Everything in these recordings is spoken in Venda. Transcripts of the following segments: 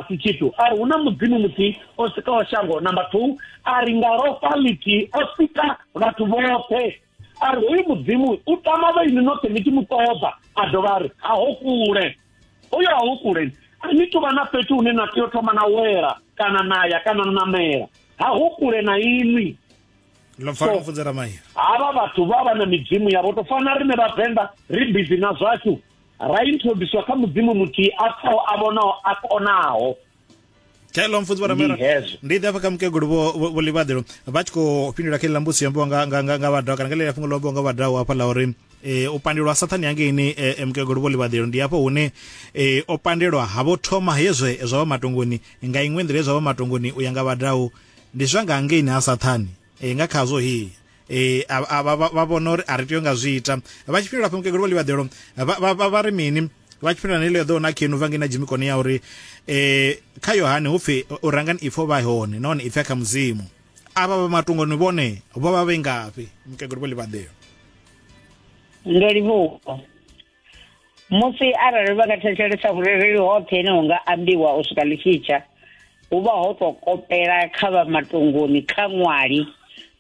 si tshithu a ri hu na mudzimu muthihi o sikaho shango number two a ri nga lofha lithihi o sika vhathu vhoṱhe a ri hoyu mudzimu u tama vhaini noṱhe ni tshi mu ṱoḓa a dovha a ri ha ho kule hoyo ha ho kule a ni tuvha na fhethu hune na tea u thoma na wela kana na ya kana na namela ha ho kule na inwi havha vhathu vha vha na midzimu yavho to fana rine vhavenḓa ri bizi na zwashu ra introducewa kha mudzimu muthihi a pfaho a vhonaho a konaho hello mfunzi vharamera ndi ḓe afha kha mukegulu vho livhaḓelo vha tshi khou fhindula kha iḽa mbusi yombiwa nga vhadaho kana nga ḽeḽa fhungo lombiwa nga vhadaho hafha ḽa uri e, u pandelwa sathani hangeini e, e, mukegulu vho livhaḓelo ndi hafho hune o pandelwa ha vho thoma hezwe zwa vha matongoni nga iṅwe nḓila ye zwa vha matongoni u ya nga vhadaho ndi zwa nga hangeini ha sathani Ee, nga khazwo hi e, a, a, vha, vha, vha vhona uri a ri tei nga zwi ita vha tshi fhindula fha mukegulu vho ḽivhaḓelo vha, vha, vha, vha ri mini vha tshi fhindula na iḽo eḓo na khenu vha ngei na dzimikoni ya uri e, kha yohane hu pfi u rangani ipfo vha hone nahone ipfi a kha mudzimu avha vha matungoni vhone vho vha vhe ngafhi mukegulu vho ḽivhaḓelo ndo livhuwa musi arali vha nga thetshelesa vhurereli hoṱhe ine hu nga ambiwa u swika ḽi tshitsha hu vha ho tou kopela kha vha matongoni kha ṅwali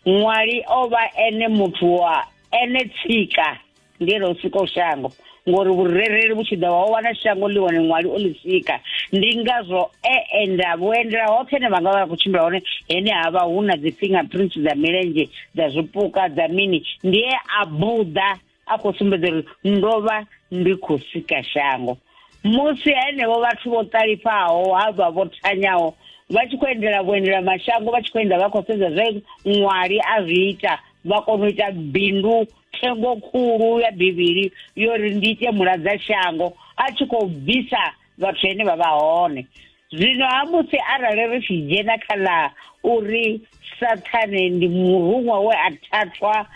ṅwali o vha ene muthu wa ene tsika ndi ene o sikaho shango ngori vhurereli vhu tshi ḓa wa wana shango ḽi wane ṅwali o ḽi sika ndi ngazwo e enda vhuendela hoṱhe ne vha nga vha vha khou tshimbila hone hene ha vha hu na dzi fingerprints dza milenzhe dza zwipuka dza mini ndi e a buḓa a khou sumbedza uri ndo vha ndi khou sika shango musi henevho vhathu vho ṱalifhaho ha vha vho thanyaho vha tshi khou endela vhuendela mashango vha tshi khou endela vha khou sedza zwe ṅwali a zwi ita vha kona u ita bindu thengo khulu ya bivhili yo ri ndi ite muladza shango a tshi khou bvisa vhathu ene vha vha hone zwino ha musi arali ri tshi dzhena kha ḽa uri sathane ndi muruṅwa we a thathwa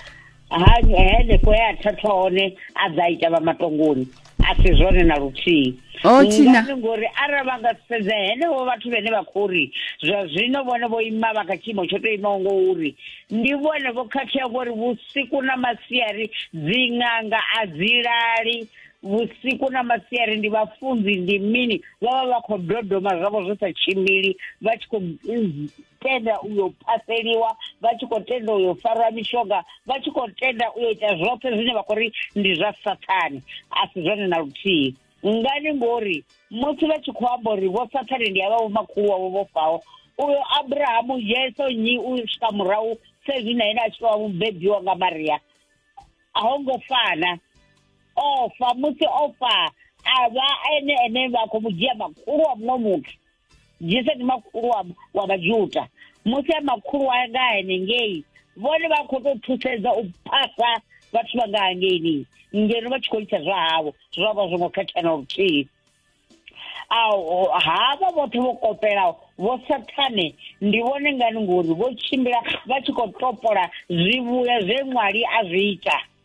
henefho he a thathwa hone a ḓa ita vha matongoni a si zwone na luthihi oh, ngani ngori arali vha nga sedza henevho vhathu vhene vha khou ri zwa zwino vhone vho ima vha kha tshiimo tsho tou imaho ngo uri ndi vhone vho khakhea ngori vhusiku na masiari dziṅanga a dzi lali vhusiku na masiari ndi vhafunzi ndi mini vha vha vha khou dodoma zwavho zwi sa tshimbili vha tshi khou mm, tenda u yo phaseliwa vha tshi khou tenda u yo farwa mishonga vha tshi khou tenda u yo ita zwoṱhe zwine vha khou ri ndi zwa sathane a si zwone na luthihi ngani ngori musi vha tshi khou amba uri vho sathane ndi avha vhomakhulu wavho vho faho uyo abrahamu yeso nyi u swika murahu sezwi na ene a tshi tovha mubebiwa nga maria a ho ngo fana o fa musi o fa a vha ene ene vha khou mu dzhia makhulu wa muṅwe muthu jesu ndi makhulu wa wa vhajuda musi a makhulu wa nga henengei vhone vha khou tou thusedza u phasa vhathu vha nga hangeini ngeno vha tshi khou ita zwa havho zwo vha zwo ngo khethana luthihi havha vhoṱhe vho kopelaho vho sathane ndi vhone ngani ngori vho tshimbila vha tshi khou topola zwivhuya zwe ṅwali a zwi ita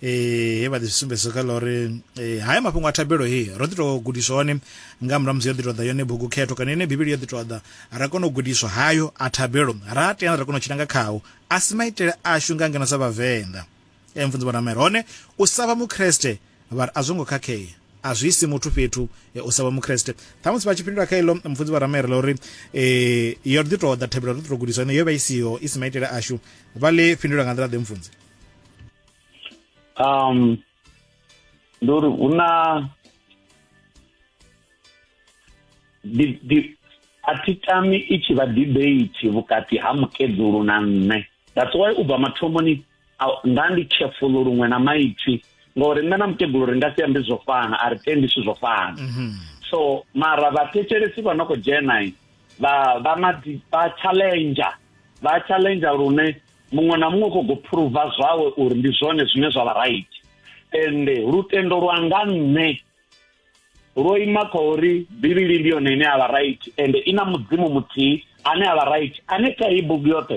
eh he vha ḓi sumbedza kha ḽa uri eh, haya mafhungo a thabelo he ro ḓi tou gudiswa one nga murahu musi yo ḓi tou ḓa yone bugu khetho kana yone bivhili yo ḓi tou ḓa ra kona u gudiswa hayo a thabelo ra teana ra kona u tshila nga khao a si maitele ashu nga ngeno sa vhavenḓa e eh, mfunzi vhonamere hone u sa vha mukreste vha ri a zwo ngo khakhea a zwi isi muthu fhethu eh, u sa vha mukreste ṱhamusi vha tshi fhindula kha iḽo mfunzi vha ramere ḽa uri um yo ḓi tou ḓa thabelo ro ḓi tou gudiswa ine yo vha i siho i si maitele ashu vha ḽi fhindula nga nḓila ḓe mfunzi um, ndi uri hu na a thi tami i tshi vha debate vhukati ha mukedzulu na nṋe that's why u bva mathomoni nda ndi careful luṅwe na maipfi ngori nṋe na mukegulu ri nga si ambe zwo fana a ri tendi zwithu zwo fana mhm. so mara vhathetshelesi vha no khou dzhena vha vha challenge vha challenge lune muṅwe na muṅwe kho go phuruva zwawe uri ndi zwone zwine zwa vha right ende lutendo lwa nga nṋe lwo ima kha uri bivhili ndi yone ine a vha right ende i na mudzimu muthihi ane a vha right ane kha i bugu yoṱhe